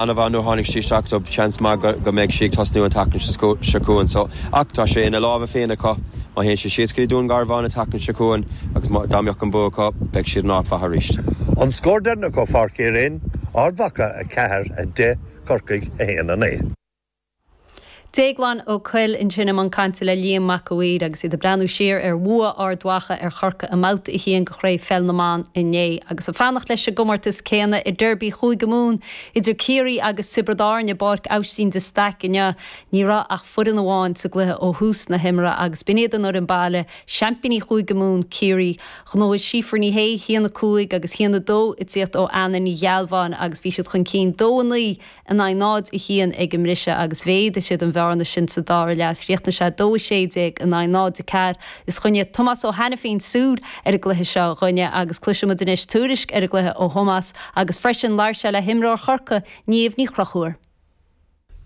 Ana-mhaith nuair a tháinig sí isteach so seans maith go mbeidh sí ag tosnú an tseachtain seo chugainn so. Ach tá sé ina lámha féin acu. Má théann siad síos go dtí Dún Garbhán an tseachtain seo chugainn agus dá mbeadh an bua acu, beidh siad in áit mhaith arís. An scór deireanach ó Pháirc Uí Rinn, Ard Mhacha 4, 10, Corcaigh 1, 9. Déaglán Ó Cuill ansin i mbun cainte le Liam Mac a' Mhaoir agus iad ag breathnú siar ar bhua Ard Mhacha ar Chorcaigh i mBabhta 1 de Chraobh Pheil na mBan inné agus ag fanacht leis an gcomórtas céanna i Derby Chúige Mumhan idir Ciarraí agus Tiobraid Árann i bPáirc Aibhstín de Staic inniu. Ní raibh ach foireann amháin sa gcluiche ó thús na himeartha agus b'in iad an fhoireann baile, seaimpíní Chúige Mumhan, Ciarraí. Ghnóthaigh Síofra Ní Shé haon 5 agus haon 2 ag tíocht ó Anna Ní Ghealbháin agus bhí siad chun cinn 2 9, in aghaidh 0, 1 ag an mbriseadh agus mhéadaigh siad an bhearna sin sa dara leath is chríochnaigh sé 2, 16 in aghaidh 0, 4. Is choinnigh Tomás Ó hAiniféin súil ar an gcluiche seo dhúinne agus cloisfidh muid anois tuairisc ar an gcluiche ó Thomás agus freisin labhair sé le himreoir Chorcaí, Niamh Ní Chonchúir.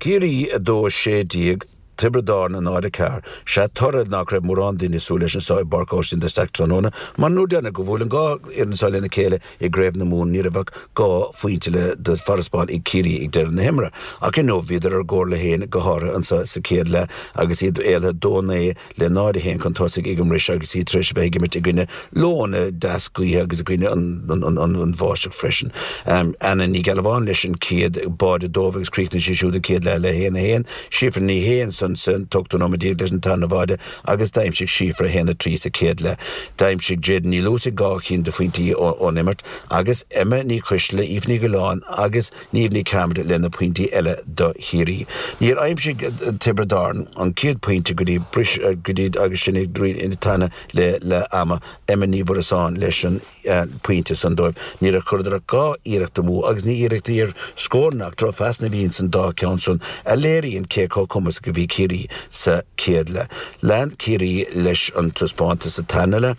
Ciarraí 2, 16 Tiobraid Árann náid a ceathair. Sea, toradh nach raibh mórán daoine ag súil leis anso i bPáirc Óistín de Staic tráthnóna, mar an uair dheireanach go bhuail an dhá fhoireann so lena chéile i gCraobh na Mumhan ní raibh ach dhá phointe le de farasbarr ag Ciarraí ag deireadh na himeartha. Ach inniu bhíodar ar a gcomhairle féin, go háirithe anso sa chéad leath agus iad éalaithe dó naoi le náid a haon chun tosaigh ag an mbris agus iad tar éis a bheith ag imirt i gcoinne leoithne dheas gaoithe agus i gcoinne an bháisteach freisin. Anna Ní Ghealbháin leis an chéad báide dóibh agus chríochnaigh sí siúd an chéad leath le haon a haon. Síofra Ní Shé ansan sa t-ochtú nóiméad déag leis an tarna bháide agus d'aimsigh Síofra a haon a trí sa chéad leath. D'aimsigh Jadyn Ní Luasaigh dhá chinn de phointí ón imirt agus Emma Ní Choisdealbha, Aoife Ní Dhuilleáin agus. Niamh Ní Chearmada le na pointí eile do Chiarraí. Níor aimsigh Tiobraid Árann an céad pointe go dtí bris go dtí agus sinn ag druidim i dteannta le leath ama. Emma Ní Mhuireasáin leis an pointe san dóibh. Níor chuireadar ach dhá iarracht amú agus ní iarrachtaí ar scóranna ach drochphasanna a bhí insan dá cheann san a léiríonn cé chomh cumasach a bhí Ciarraí sa céad leath. Lean Ciarraí leis an taispeántas sa tarna leath.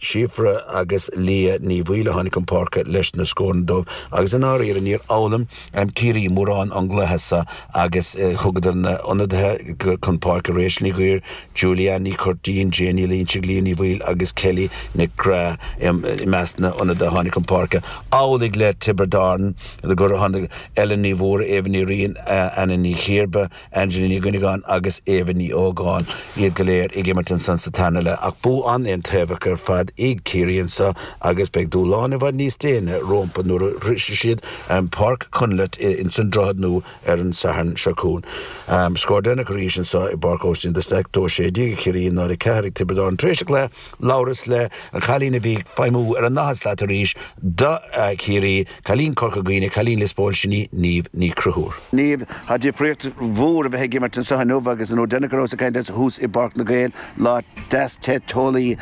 Síofra agus Liadh Ní Bhaoill a tháinig chun páirce leis na scóranna dóibh agus i ndáiríre níor fhoghlaim Ciarraí mórán ón gcluiche seo agus thugadar na h-ionadaithe chun páirce, Rachel Ní Dhuibhir, Julie Anne Ní Churtín, Jane Ní Loinsigh, Liadh Ní Bhaoill agus Kelly Nic Craith i measc na n-ionadaithe a tháinig chun páirce, amhlaidh le Tiobraid Árann gur tháinig Ellen Ní Mhórdha, Eva Ní Riain, Anna Ní Chiarba. Angelina Ní Dhuinneagáin agus Éabha Ní Ógáin, iad go léir ag imirt ansan sa tarna leath ach bua an-aontaobhach ar fad ag Ciarraí anso agus beidh dúshláin i bhfad níos déine rómpa nuair a shroisfidh siad Páirc Chonleth ins an Droichead Nua ar an Satharn seo chughainn. Scór deireanach arís anso i bPáirc Óistín de Staic, dó a sé déag ag Ciarraí, a náid a ceathair ag Tiobraid Árann. Tar éis an chluiche, labhras le an cailín a bhí ag feidhmiú ar an ndaichead slat arís do Chiarraí, Cailín Corca Dhuibhne, Cailín Lios Póil, sin í Niamh Ní Chonchúir. Niamh, Tá difríocht mhór a bheith ag imirt anseo inniu agus an uair deireanach go rabhas ag caint leat thuas i bPáirc na nGael, lá deas te teolaí.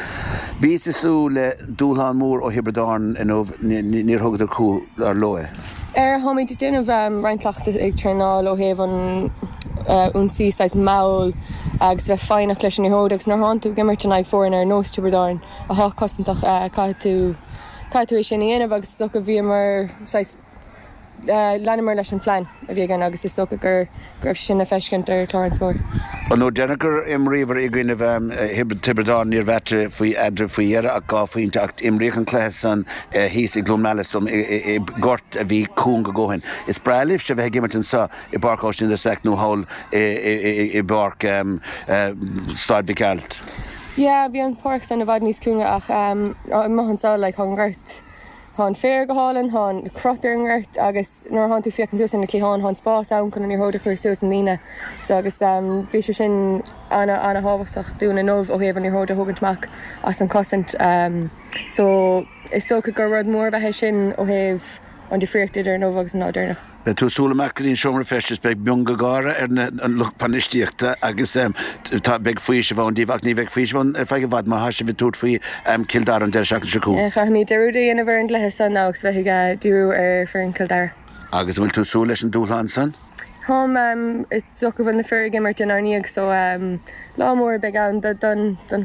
Bhís ag súil le dúshlán mór ó Thiobraid Árann inniu, níor thugadar cúl, dar ndóigh. Ar, Táimid ag déanamh roinnt cleachtaidh ag traenáil ó thaobh an ionsaí, saghas mall agus a bheith foighneach leis an liathróid agus nuair a thánn tú ag imirt in aghaidh foirne ar nós Tiobraid Árann atá cosantach caithfidh tú, Caithfidh tú é sin a dhéanamh agus is dócha bhíomar, saghas, leanamar leis an phlean a bhí againn agus is dócha go raibh sé sin le feiscint ar chlár an scóir. An uair deireanach gur imríobhair i gcoinnibh Thiobraid Árann ní raibh ach faoi eadraibh faoi dheireadh ach dhá phointe ach imríodh an cluiche san thíos i gCluain Meala, is dóigh liom, i gort a bhí cúng a dhóthain. Is breá libhse a bheith ag imirt anso i bPáirc Aibhistín de Staic nó thall i bPáirc, Staid Mhic Gearailt. Yeah bhí an páirc san i bhfad níos cúnga ach eh maith anso like tá an gort tá an féar go hálainn tá an-chrot ar an ngort agus nuair a thánn tú ag féachaint suas ar na cliatháin tá an spás ann chun an liathróid a chur suas na ndaoine so agus eh bhí sé sin ana ana thábhachtach dúinn inniu ó thaobh an liathróid a thógaint amach as an chosaint eh so is dócha gur rud mór ab ea é sin ó thaobh an difríocht idir inniu agus an lá deireanach. Beidh tú ag siúl amach go dtí an seomra feistis, beidh miongháire ar an lucht bainistíochta agus beidh faoiseamh ann daoibh, ach ní bheidh faoiseamh ann ar feadh i bhfad má thá sibh ag tabhairt faoi Chill Dara an deireadh seachtaine seo chugainn. Caithfimid dearúd a dhéanamh ar an gcluiche san agus bheith ag díriú ar foireann Chill Dara. Agus an bhfuil tú ag súil leis an dúshlán san? Táim, is dócha go bhfuil na fir ag imirt inár ndiaidh so lá mór a bheidh ann don